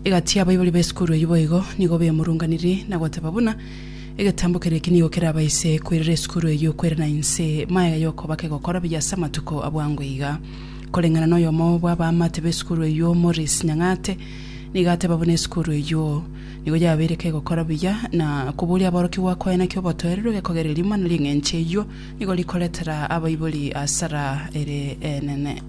Egati y'abaibori b'esukuru eyio boigo nigo bemurunganirie na goteba buna, Egetambo keria eke nigo kerabaise koirera esukuru eyio kwerana inse magega y'okoba kegokora buya ase amatuko abwango iga. Koreng'ana noyomo bw'abaamate b'esukuru eyio Maurice Nyang'ate nigo ateba buna esukuru eyio nigo yabeire kegokora buya na koboria aborokigwa koe naki obotoereru egekogererio mana ring'enche eyio nigo rikoretera abaibori asara ere enene.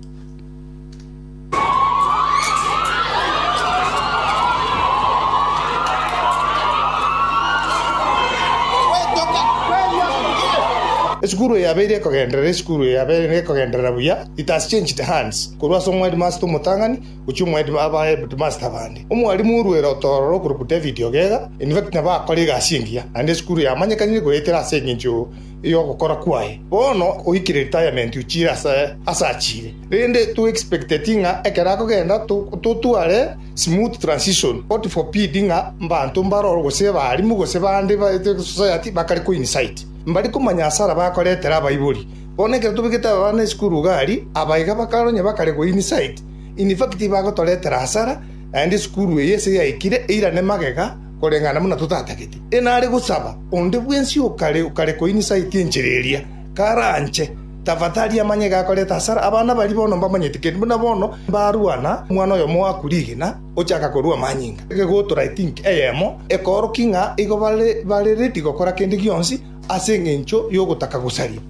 Esukuru eyabeire ekogenderera esukuru eyabeire ekogenderera buya it has changed hands korwa ase omwedimasta omotang'ani gochia omwedi abaheadmasta abande omwalimu orwere otororo okoruku david ogega in fact nabo akore egasi engiya naende esukuru yamanyekanire goetera ase engencho y'ogokora kwaye. Bono oikire retirement ochire ase ase achire, rende to expecteti ng'a ekero akogenda totware smooth transition, God forbid ng'a mbanto mbaroro gose abalimu gose bande baete society bakare ko incite mbari komanya asara bakoretera abaibori. Bono ekero tobegete abana esukuru iga aria, aba iga bakare onye bakare go incite, in fact bagotoretera asara naende esukuru eye ase yaikire eirane magega. Koreng'ana buna totatagete, enare gosaba onde bwensi okare okare koinisaiti enchera eria, karanche, tafadhali amanye gakoreta hasara. Abana baria bono mbamanyete, kende buna bono mbarua na omwana oyomo oaku rigena, ochaka korua amanyinga. Egegotora I think eyemo ekoorokia ng'a igo bare bare ready gokora kende gionsi ase engencho y'ogotaka gosaria.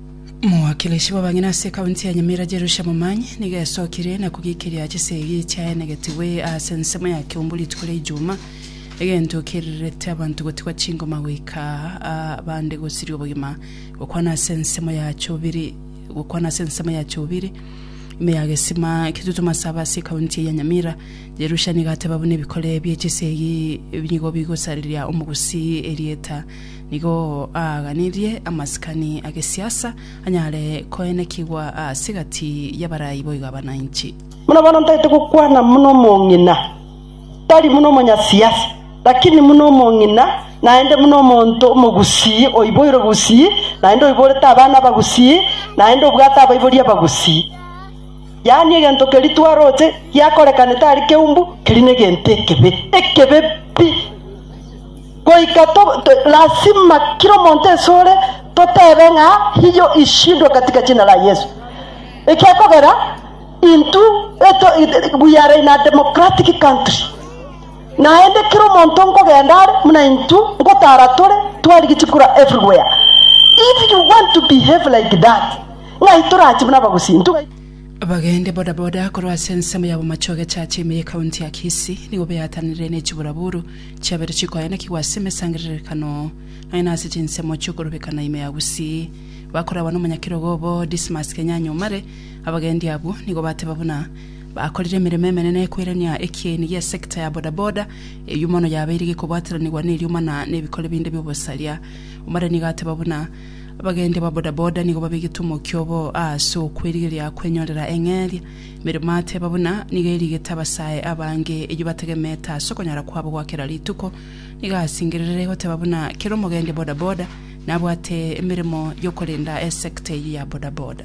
Omowakilishi bw'abang'ina ase ekaunti ya Nyamira Jerusha Momanyi nigo esokire na kogikiria chisegi chiaenegetigwe ase ensemo ya Kiumbu rituko ria Ijumaa, Egento kerirerete abanto gotigwa chingoma goika aa bande gosiria obogima, gokwana ase ensemo ya Chobiri gokwana ase ensemo ya Chobiri, ime ya Gesima, Kitutu Masaba ase ekaunti eye ya Nyamira. Jerusha nigo ateba buna ebikore bie chisegi nigo bigosariria omogusii erieta, nigo aaganirie amasikani a gesiasa anyare koenekigwa aase gati y'abarai boigo abana inchi. Buna bono ntaete gokwana buna omong'ina. tari buna omonyasiasi, lakini buna omong'ina, naende buna omonto omogusii oiboire obusii, naende oiborete abana abagusii, naende obwate abaibori abagusii. Yaani egento keria twaroche giakorekane tari keumbu, keria negento ekebe, ekebe pi. Goika to- to- lasima kera omonto esore totebe ng'a hiyo ishindwe katika jina la Yesu. Ekiakogera. Intwe we are in a democratic country naende kera omonto nkogenda are buna intwe nkotara tore twarigie chikura everywhere if you want to behave like that ng'ai torache buna abagusi intwe ng'ai Abagende bodaboda korwa ase ensemo ya Bomacho Egechacha ime ye county ya Kisii nigo beatanire ne chiburaburu chiabeire chikoenekigwa ase emesangererekano naende ase chinsemo chiokorobekana ime ya Gusii. Bakorabwa nomonyakirego obo Dismas Kenyanya Omare, Abagendi abwo nigo bateba buna bakorire emeremo emenene koirania ekieni gi'esecta ya bodaboda, eyio mono yabeire gekobwataranigwa nerioma na nebikore binde bi'obosaria. Omorani nigo ateba buna abagendi ba bodaboda nigo babegete omokia obo aase okwerigeria kwenyorera eng'eria. Emeremo ateba buna nigo erigete abasae abange eyio batagemete ase okonyara kwabo gwa kera rituko. Nigo asingererire goteba buna kera omogendi bodaboda nabwate emeremo y'okorenda esecta eyio ya bodaboda.